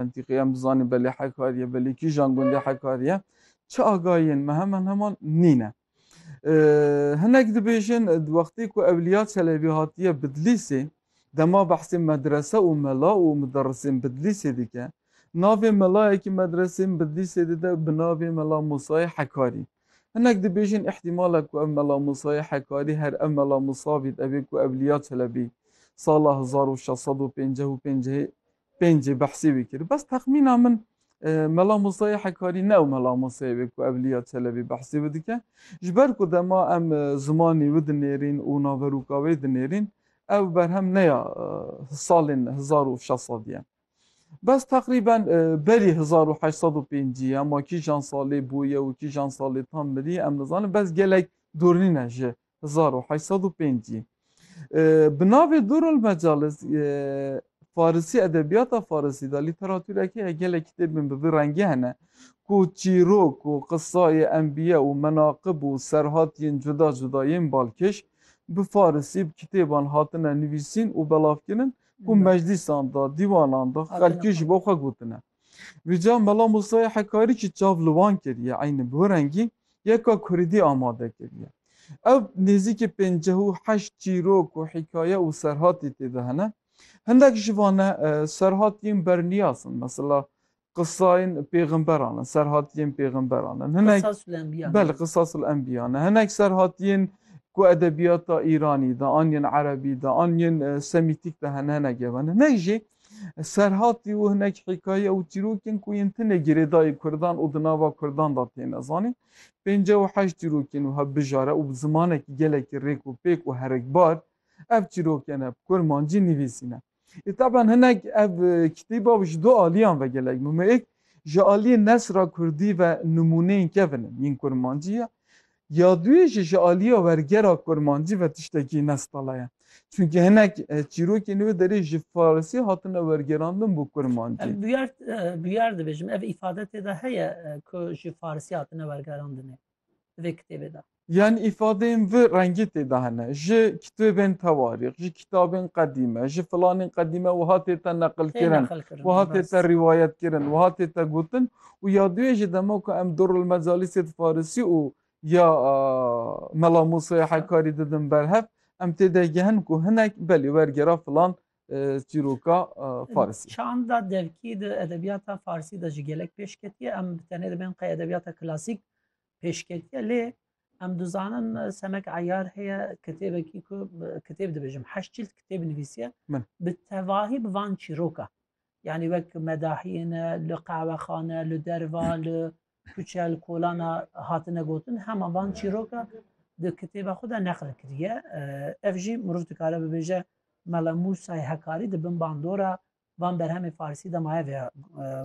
Mentîqeya em dizanîn belê Hekar ye, belê kîjan gundê Hekar ye. Çi agahiyên me heman heman nîne. Hinek dibêjin di wextê ku Ewliya Çelebî hatiye Bidlîsê dema behsê medrese û mela û muderrisên Bidlîsê dike. Navê melayekî medresên Bidlîsê dide bi navê Mela Musayê Hekarî. Hinek dibêjin îhtîmal e ku ev Mela Musayê Hekarî her ev Mela Musa bît evê ku Ewliya Çelebî sala hezar û şeş sed û pênceh û pêncehê Pêncî behsî wî kir. Bes texmîna min Mela Musa yê Hekarî ne ew Mela Musayê wê ku Evlîya Çelebî behsî wî dike. Ji ber ku dema em zimanî wî dinêrîn û naverûka wê dinêrîn, ew berhem ne ya salên hezar û şeş sedî ye. Bes teqrîben berî hezar û heşt sed û pêncî ye. Ma kîjan salê bûye û kîjan salê tam mirî em nizanin. Bes gelek dûrîne ji Hezar û heşt sed û pêncî bi navê Durul Mecalis Farisî edebiyata Farisî de lîteratûrekî ye gelek kitêbên bi vî rengî hene ku çîrok û qisayê enbiye û menaqib û serhatiyên cuda cuda yên balkêş bi Farisî bi kitêban hatine nivîsîn û belavkirin ku meclîsan de, dîwanan de xelkî ji bo xwe gotine. Vîca Mela Musayê Hekarî jî çav li wan kiriye eynî bi wê rengî yeka Kuridî amade kiriye. Ev nêzîkî pênceh û heşt çîrok û hîkaye û serhatî tê de hene. Hindek ji van e serhatiyên berniyas in. Mesela qisayên pêxemberan in, serhatiyên pêxemberan in. Hinek Qisasul Enbiya. Belê Qisasul Enbiya ne. Hinek serhatiyên ku edebiyata Îranî de an yên Erebî de an yên Semîtîk de hene hinek ev hene. Hinek jî Serhatî û hinek hîkaye û çîrokên ku yên tenê girêdayî kurdan û di nava kurdan de têne zanîn. Pênceh û heşt çîrokên wiha bijare û bi zimanekî gelekî rêk û pêk û herikbar ev çîrokên ne bi kurmancî nivîsîne. Ê taban hinek ev kitêba ji du aliyan ve gelek mumêk, ji aliyê nesra kurdî ve nimûneyên kevin in yên kurmancî ye. Ya duyê jî ji aliya wergera kurmancî ve tiştekî nestala ye. Çunkî hinek çîrokên wê derê ji farisî hatine wergerandin bo kurmancî. Em bûyer bûyer dibêjim ev îfade tê de heye ku ji farisî hatine wergerandinê di vê kitêbê de. Yanî îfadeyên vi rengî tê de hene, ji kitêbên tewarîx, ji kitabên qedîme, ji filanên qedîme wiha tê te neqilkirin, wiha tê te rîwayetkirin, wiha tê te gotin û ya duyê jî dema ku em Durrul Mecalisê di farisî û ya Mela Musaya Hekkarî didin ber hev em tê de gehin ku hinek belê wergera filan çîroka farisî. Çanda devkî di edebiyata farisî de ji gelek pêş ketiye em bi tenê dibên qey edebiyata klasîk pêş ketiye lê em dizanin semek eyar heye kitêbekî ku kitêb dibêjim heşt çîld kitêb nivîsiye bi tevahî bi van çîroka Yanî wek medahiyê ne li qehwexane, li derva, li kuçe, li kolana hatine gotin, hema van çîroka di kitêba xwe de neqil kiriye. Ev jî mirov dikare bibêje Mela Musay Hekarî di bin bandora van berhemê Farsî de maye vê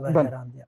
wergerandiye.